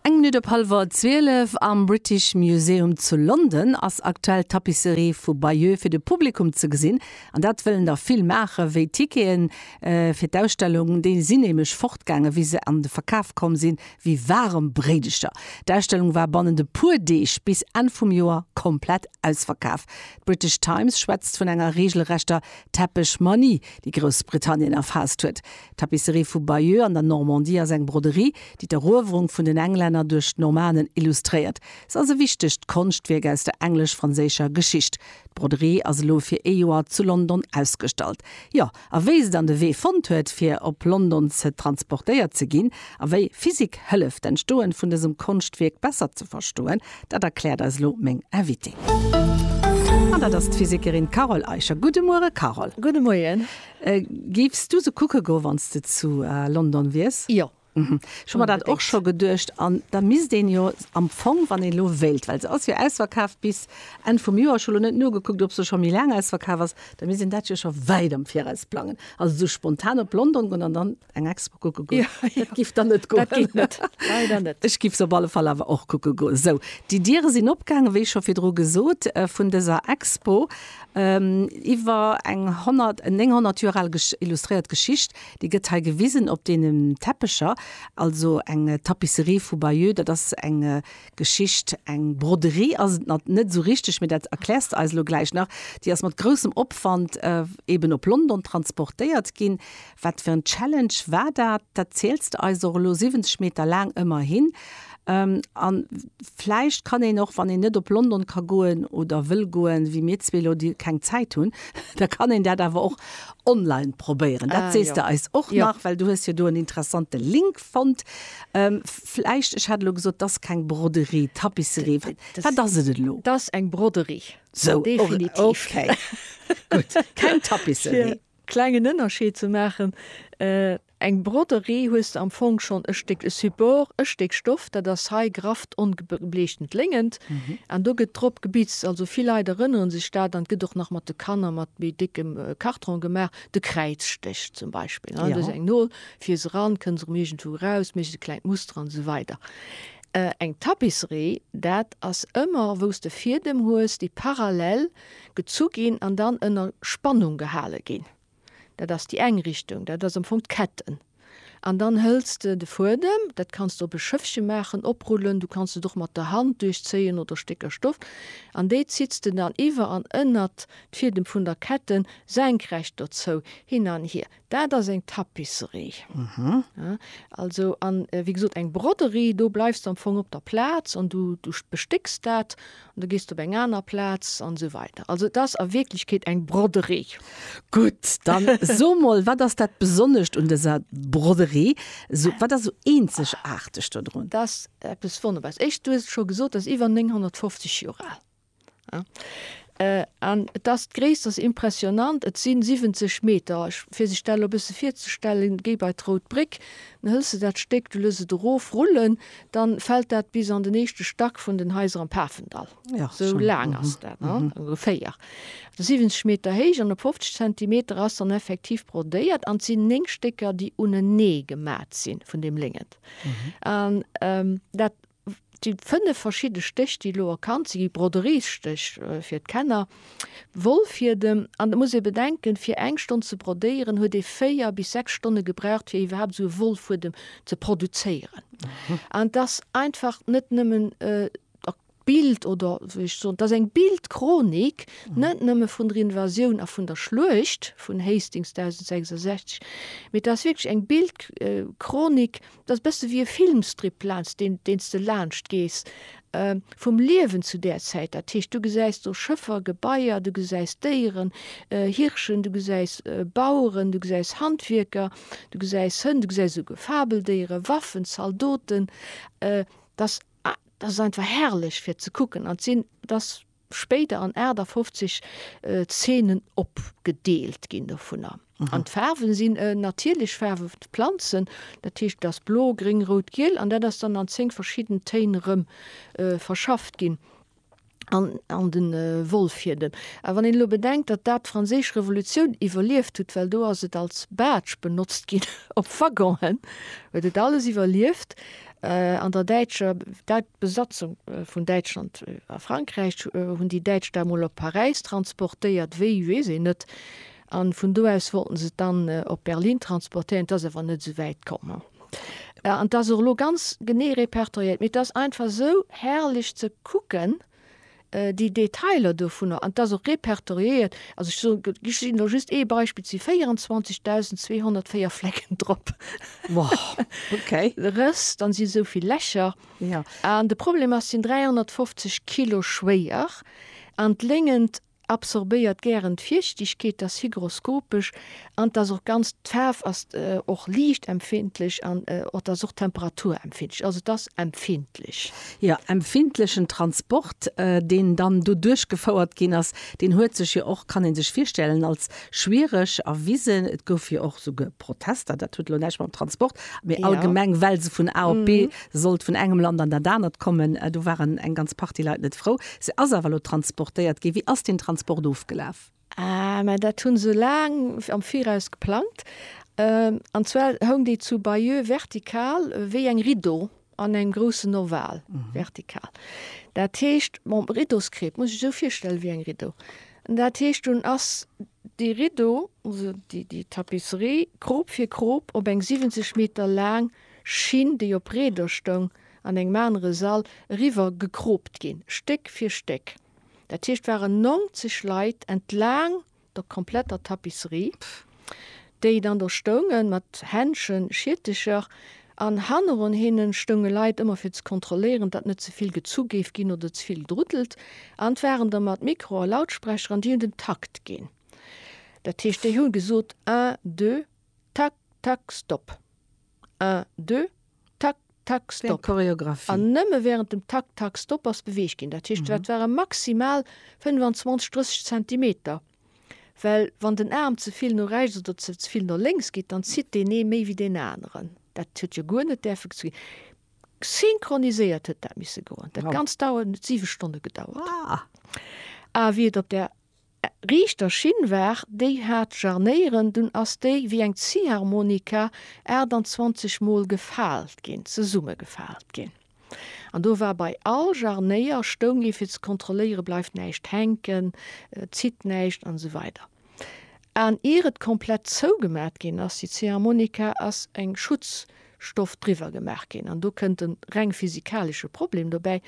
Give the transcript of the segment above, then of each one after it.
Eng Minutt op hallwer 12 am British Museum zu London ass aktuell d'Tapisserie vu Bayeux fir de Publikum ze gesinn. An dat wëllen der vill maachen, wéi d'Tickete fir d'Ausstellung, déi sinn nämlech fortgaangen, wéi se an de Verkaf komm sinn, wéi waarem Bréidecher. D'Ausstellung war bannent e puer Deeg, bis Enn vum Joer, komplett ausverkaf. D'British Times schwätzt vun enger reegelrechter Teppechmanie, déi Groussbritannien erfaasst huet. D'Tapisserie vu Bayeux an der Normandie ass eng Broderie, déi d'Eruewerung vun den Englänner duerch d'Normanen illustréiert. Se ass e wichtegt Konschtwierk aus der englesch-franséischer Geschicht. D'Broderie ass elo fir ee Joer zu London ausgestallt. Jo, a wéi se dann de Wee fonnt huet, fir op London ze transportéiert ze ginn, a wéi Physik hëlleft, d'Entstoen vun dësem Konschtwierk besser ze verstoen, dat erkläert eis elo meng Invitée. An dat ass d'Physikerin Carole Eicher. Gudde Muere, Carole. Gudde Moien. Géifs du se kucke goen, wann s de zu London wiers? Jo. Ech hu mer dat och scho geduecht. An da misst een jo am Fong, wann ee lo wéilt, well se ass jo ausverkaaft bis Enn vum Joer, ech hu lo net nogekuckt, ob se scho méi laang ausverkaaft ass, da misst een dat jo scho wäit am Viraus plangen. Also esou spontan op London goen an dann eng Expo kucke goen. Dat giff dann net goen. Dat geet net, leider net. Ech giff se op alle Fall awer och kucke goen. Sou, déi Diere sinn opgaangen, wéi scho virdru gesot, vun dëser Expo iwwer eng 900 Joer al illustréiert Geschicht. Déi gëtt hei gewisen op deene Teppecher, also eng Tapisserie vu Bayeux. Dat ass eng Geschicht, eng Broderie ass et net esou richteg, mee dat erkläers de eis elo gläich nach. Déi ass mat groussem Opwand eeben op London transportéiert ginn, Wat fir en Challenge war dat? Dat ziels de eis och elo, 70 Meter laang ëmmerhin. A vläicht kann een och, wann een net op London ka goen oder wëll goen, wéi mir zwee elo, déi keng Zäit hunn, da kann een dat awer och online probéieren. Dat sees de eis och nach, well du hues jo do en interessante Link fonnt. Vläicht, ech hat elo gesot, et ass keng Broderie, Tapisserie. Wat ass et elo? Et ass eng Broderie, definitiv. Sou, okay, gutt. Keng Tapisserie. Klengen Ënnerscheed ze maachen. Eng Broderie hues de am Fong schonn e Stéck Support, e Stéck Stoff, dat ass hei grafft ongebleechtent Léngent, an do gëtt drop gebitzt. Also vill Leit erënnere sech dat, an et gëtt och nach mat de Kanner mat méi déckem Kartron gemaach, de Kräizstech zum Beispill. Do ass eng Nol, fier se ran, kënn se erëm iergendwou eraus, méchs e klengt Muster an esou weider. Eng Tapisserie, dat ass ëmmer wou s de Fiedem hues, déi parallel Gezu ginn an dann ënner Spannung gehale ginn. Dat ass déi eng Richtung, dat ass am Fong d'Ketten. An dann hëls de de Fuedem, dat kanns de op e Schëffche maachen, oprullen, du kanns et och mat der Hand duerchzéien oder Stécker Stoff, an déi zitts de dann iwwer an ënnert d'Fiedem vun der Ketten, senkrecht dozou, hin an hier. Dat ass eng Tapisserie. Also an wéi gesot eng Broderie, do bleifs de am Fong op der Plaz an du bestécks dat an da gees de op eng aner Plaz an esou weider. Also et ass a Wierklechkeet eng Broderie. Gutt, dann so mol, wat ass dat Besonnescht un dëser Broderie? Wat ass esou eenzegaarteg dodrun? Dat ass eppes Wonnerbares. Éischt, du hues et scho gesot, dat ass iwwer 950 Joer al. An et ass, d'Gréisst ass impressionant, et sinn 70 Meter, ech, fir sech dat elo e bësse virzestellen, géi bei d'Rout Bréck, dann hëls de dat Stéck, du looss et erof rullen, dann fält dat bis an den éischte Stack vun den Haiser am Pafendall. Esou laang ass dat, ongeféier. Et ass 70 Meter héich an op 50 Zentimeter ass dann effektiv brodéiert an et sinn 9 Stécker, déi unenee gemat sinn vun deem Léngent. An dat. Déi fënnef verschidde Stéch, déi elo erkannt sinn, gi Broderies-Stéch fir d'Kenner, Wollfiedem. An et muss ee bedenken, fir eng Stonn ze brodéieren, huet ee véier bis sechs Stonne gebraucht, fir iwwerhaapt esou e Wollfuedem ze produzéieren. An et ass einfach net nëmmen d'Bild oder, wéi ech soen, et ass eng Bildchronik, net nëmme vun der Invasioun a vun der Schluecht vun Hastings 1066, mee et ass wierklech eng Bildchronik Et ass e bësse wéi e Filmstrip, laanscht deen deen s de laanscht gees, vum Liewen zu där Zäit. Dat heescht, du gesäis do Schëffer, Gebaier, du gesäis Déieren, Hirschen, du gesäis Baueren, du gesäis Handwierker, du gesäis Hënn, du gesäis esouguer Fabeldéiere, Waffen, Zaldoten. Dat ass einfach herrlech fir ze kucken. An d'Zeen, dat ass spéider an 58 Zeenen opgedeelt ginn dovunner. An d'Faarwen sinn natierlech Faarwen vun de Planzen, dat heescht et ass blo, gréng, rout, giel an dat ass dann an 10 verschidden Téin erëm verschafft ginn an de Wollfiedem. A wann een elo bedenkt, datt dat d'Franséisch Revolutioun iwwerlieft huet, well do ass et als Badge benotzt ginn op Waggonen, huet et alles iwwerlieft. An der däitscher Besatzung vun Däitschland a Frankräich hunn déi Däitsch dat mol op Paräis transportéiert, wéi weess een net. A vun do aus wollten se et dann op Berlin transportéieren. Et ass awer net esou wäit komm. An et ass och elo ganz genee repertoriéiert, mee et ass einfach esou herrlech ze kucken, Déi Detailer dovunner, an et ass och repertoriéiert, also ech soen, ech ginn elo just ee Beispill, et si 24.204 Flecken drop. Wow, okay. Rëss, dann si esou vill Lächer. Jo. An de Problem ass, sinn 350 Kilo schwéier an d'Léngent Absorbéiert gären d'Fiichtegkeet, ass hygroskopesch an et ass och ganz, d'Faarf ass och liichtempfindlech an et ass och temperaturempfindlech, also et ass empfindlech. Jo, empfindlechen Transport, deen dann do duerchgefouert ginn ass, deen huet sech jo och, kann ee sech virstellen, als schwiereg erwisen. Et gouf jo och souguer Protester, dat huet elo näischt mam Transport, mee allgemeng, well se vun A op B sollt, vun engem Land an dat anert kommen, do waren eng ganz Partie Leit net frou. Se ass awer elo transportéiert ginn. Wéi ass deen Transport ofgelaf? Ah, mä dat hu se laang am Viraus geplangt. An zwar houng déi zu Bayeux vertikal wéi eng Rideau An engem groussen Oval, vertikal. Dat heescht, mam Riddoskreb, muss ech sou virstelle wéi eng Riddo. Dat heescht, dunn ass déi Riddo, also déi, déi Tapisserie, Krop fir Krop op eng 70 Meter laang Schinn, déi op Reeder stoung, an engem anere Sall eriwwer gekropt ginn, Stéck fir Stéck. Dat heescht, waren 90 Leit entlaang der kompletter Tapisserie, déi dann do stoungen, mat Händschen, Schiertecher, an hanneron hinnen stounge Leit ëmmer fir ze kontrolléieren, datt net ze vill gezu géif ginn oder ze vill gedruddelt, an d'waren da mat Mikro a Lautsprecher an déi hunn den Takt ginn. Dat heescht, déi hu gesot, un, deux, tak, tak, stop. Un, deux, tak, tak, stop. Wéi eng Choreographie. An nëmme wärend dem tak, tak, stop ass beweegt ginn. Dat heescht, dat ware maximal 25, 30 Zentimeter. Well wann den Aarm ze vill no rechts oder ze vill no lénks geet, dann zitt deen ee méi wéi deen aneren. Dat huet jo guer net däerfe ze ginn. Synchroniséiert huet dat misse goen. Dat Ganzt dauert, et huet siwe Stonne gedauert. A wéi et op där. Riichter Schinn war, déi hat Jarnéieren, dunn ass déi wéi eng Ziharmonika 28 mol gefaalt ginn, zesummegefaalt ginn. An do war bei all Jarnéier stoung ee fir ze kontrolléiere bleift näischt hänken, zitt näischt an esou weider. An ier et komplett zougemat ginn ass, déi Ziharmonika, ass eng Schutzstoff driwwer gemaach ginn. An do kënnt e reng physikalesche Problem dobäi,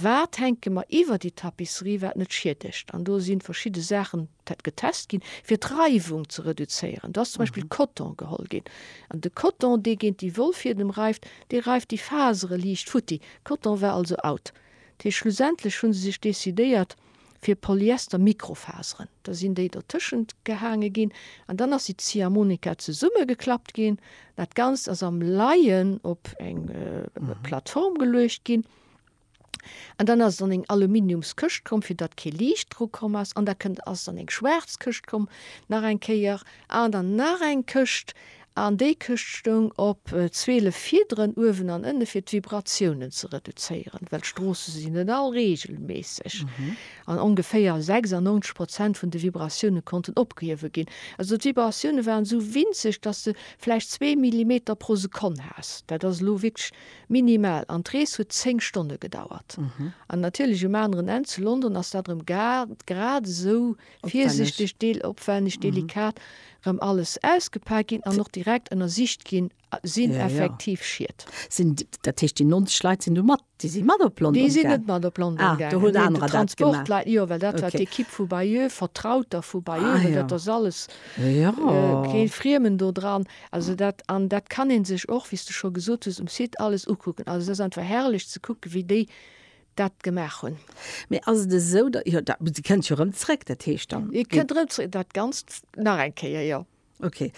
Wat hänke mer iwwer déi Tapisserie, wat net schiedegt? An do si verschidde Saachen getest ginn, fir d'Reiwung ze reduzéieren. Do ass zum Beispill Coton geholl ginn. An de Coton, dee géint déi Wollfiedem reift, dee reift déi Fasere liicht futti. Coton war also out. Dat heescht, schlussendlech hu se sech decidéiert fir Polyester-Mikrofaseren. Da sinn déi dertëschent gehaange ginn an dann ass déi Ziehharmonika zesummegeklappt ginn. Dat Ganzt ass am Laien op eng Plattform geluecht ginn. An dann ass dann eng Aluminiums Këscht komm, fir datt kee Liicht dru komm ass. An da kënnt, ass dann eng schwaarz Këscht komm, nach eng Kéier. An dann nach eng Këscht. An déi Këscht stoung op 12 Fiederen uewen an ënne, fir d'Vibratiounen ze reduzéieren, well d'Stroosse si net all reegelméisseg. An ongeféier 96 Prozent vun de Vibratioune konnten opgehuewe ginn. Also d'Vibratioune waren esou winzeg, datt s de vläicht zwee Millimeter pro Sekonn has. Dat ass elo wierklech Minimal, an d'Rees huet 10 Stonne gedauert. An natierlech um aneren Enn, zu London, ass dat erëm grad esou virsichteg, opwänneg, delikat erëm alles ausgepaakt ginn an och direkt ënnersicht ginn, Sinn effektiv Schied? Sinn, dat heescht déi 90 Leit sinn du mat, déi si mat op London gaangen? Déi sinn net mat op London gaangen. Ah, do hunn anerer dat gemaach. Déi Transportleit, jo, well dat war d'Equipe vu Bayeux, Vertrauter vu Bayeux, well dat ass alles kee Friemen dodran. Also dat, an dat kann ee sech och, wéi s de scho gesot hues, um Site alles ukucken. Also et ass einfach herrlech ze kucken, wéi déi dat gemaach hunn. Mee ass et esou, da, jo, da, si kënnt jo erëm zréck, dat heescht dann. Et kënnt erëm zréck, dat Ganzt nach eng Kéier, jo. Okay.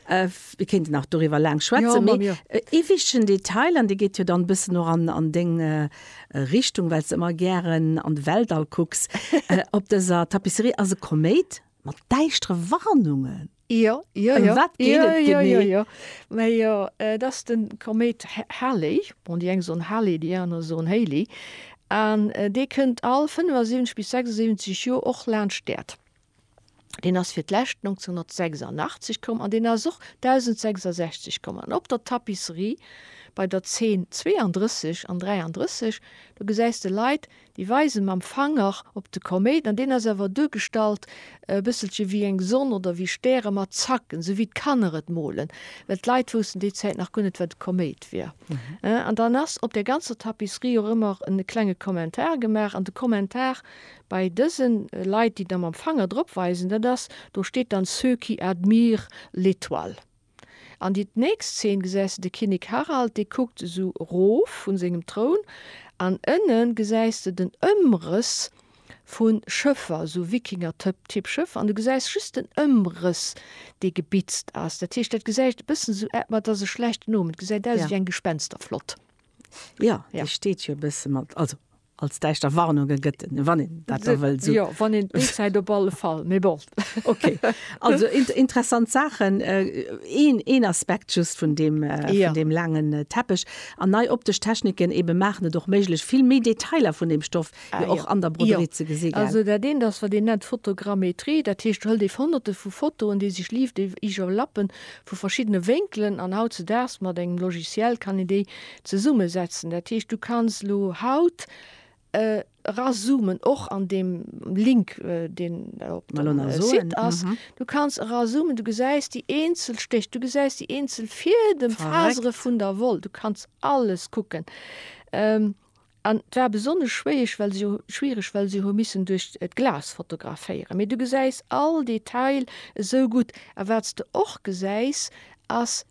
Mir kéinten nach doriwwer laang schwätzen, mee ee wichtegen Detail, an dee geet jo dann e bëssen och an deng Richtung, well s de ëmmer gären an de Weltall kucks, Op dëser Tapisserie ass e Koméit mat däischtere Warnungen. Jo, jo, jo. Wat geet et genee? Jo, jo, jo. Jo, et ass den Komet Halley. Bon, déi eng soen Halley, déi aner soen Haley. An dee kënnt all 75 bis 76 Joer och laanscht d'Äerd. Deen ass fir d'lescht 1986 komm an deen ass och 1066 komm. An op der Tapisserie bei der Zeen 32 an 33, do gesäis de Leit, Déi weise mam Fanger op de Koméit, an deen ass awer duergestallt e bësselche wéi eng Sonn oder wéi Stäre mat Zacken, esou wéi d'Kanner et molen, well d'Leit wousten déi Zäit nach guer net, wat e Koméit wier. An dann ass op der ganzer Tapisserie och ëmmer e klenge Kommentar gemaach. An de Kommentar bei dëse Leit, déi da mam Fanger drop weisen, dat ass, do steet dann, ceux qui admirent l'étoile. An di nächst Szene gesäis de de Kinnek Harald, dee kuckt esou erof vun sengem Troun, an ënnen gesäis de den Ëmrëss vun Schëffer, esou Wikinger-Typ-Schëffer, an du gesäis just den Ëmrëss dee gebitzt ass. Dat heescht dat gesäit e bëssen esou ät, ma et ass e schlechten Omen, et gesäit aus ewéi eng Gespensterflott. Jo, déi steet jo e bësse mat, also Als däischter Warnunge gëtt et, wann een dat da wëll sou. Jo, wann een d'Bildzäit op alle Fall, mee bon. Okay. Also interessant Saachen. Een, een Aspekt just vun deem, vun deem laangen Teppech. An nei optesch Techniken eebe maachen et och méiglech, vill méi Detailer vun deem Stoff jo och an der Broderie ze gesi gell? Also dat eent ass, wat een nennt Photogrammetrie. Dat heescht, do hëlt ee Honnerte vu Fotoen, déi sech live iwwerlappen, vu verschiddene Wénkelen. An hautzedaags mat engem Logiciel kann een déi Zesumme setzen. Dat heescht du kanns elo haut erazoomen, och an deem Link deen op dem Site ass, du kanns erazoomen, du gesäis déi eenzel Stéch, du gesäis déi eenzel Fiedem, Fasere vun der Woll, du kanns alles kucken. An et war besonnesch schwéieg, well se jo, schwiereg, well se hu missen duerch d'Glas fotograféieren, mee du gesäis all Detail esou gutt. A wat s de och gesäis ass,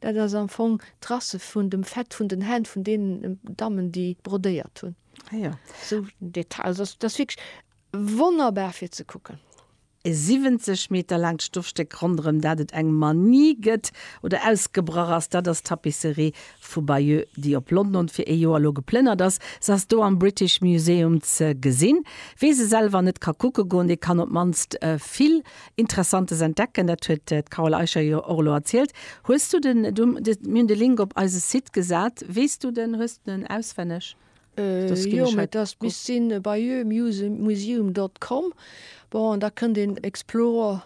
Dat ass am Fong d'Trace vun dem Fett vun den Hänn vun deenen Dammen, déi brodéiert hunn. Ah ja. Sou en Detail. Also ass ass wierklech wonnerbar fir ze kucken. E 70 Meter laangt Stoffstéck ronderëm dat et eng Manie gëtt oder ausgebrach ass, dat ass d'Tapisserie vu Bayeux, déi op London fir ee Joer elo geplënnert ass. Se ass do am British Museum ze gesinn. Wee se selwer net ka kucke goen, dee kann op d'mannst vill. Interessantes entdecken, dat huet d'Carole Eicher jo och elo erzielt. Hues du den, du, de, mir hunn de Link op eise Site gesat, weess du den, hues du den auswenneg? Äh, jo, mä dat misst sinn bayeuxmuseum dot com, bon, an da kënnt een Explore,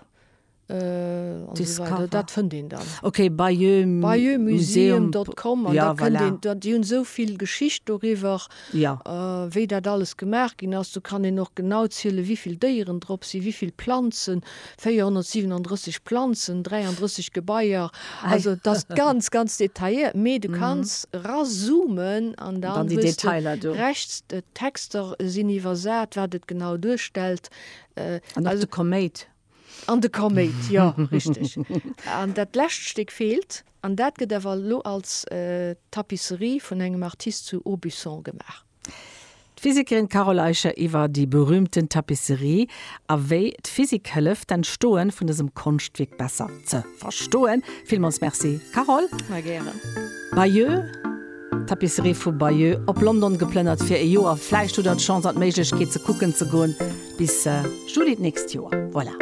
an esou weider, dat fënnt een dann. Ok, bayeuxmuseum. Bayeuxmuseum dot com, an da kënnt een, déi hunn esou vill Geschicht doriwwer. Jo. Wéi dat alles gemaach ginn ass, do kann een och genau zielen, wivill Déieren drop sinn, wivill Planzen, 437 Planzen, 33 Gebaier, also et ass ganz, ganz detailléiert, mee du kanns erazoomen an da wëss de rechts. D'Texter sinn iwwersat, wat et genau duerstellt. An och de Koméit. An de Koméit, jo, richteg. An dat lescht Stéck feelt, an dat gëtt awer elo als Tapisserie vun engem Artist zu Aubusson gemaach. D'Physikerin Carole Eicher iwwer déi berüümten Tapisserie a wéi d'Physik hëlleft, d'Entstoen vun dësem Konschtwierk besser ze verstoen. Villmools Merci, Carole. Mä gären. Bayeux. Tapisserie vu Bayeux op London geplënnert fir e Joer. Vläicht hutt der d'Chance an d'Méiglechkeet ze kucken ze goen bis Juli d'nächst Joer. Voilà.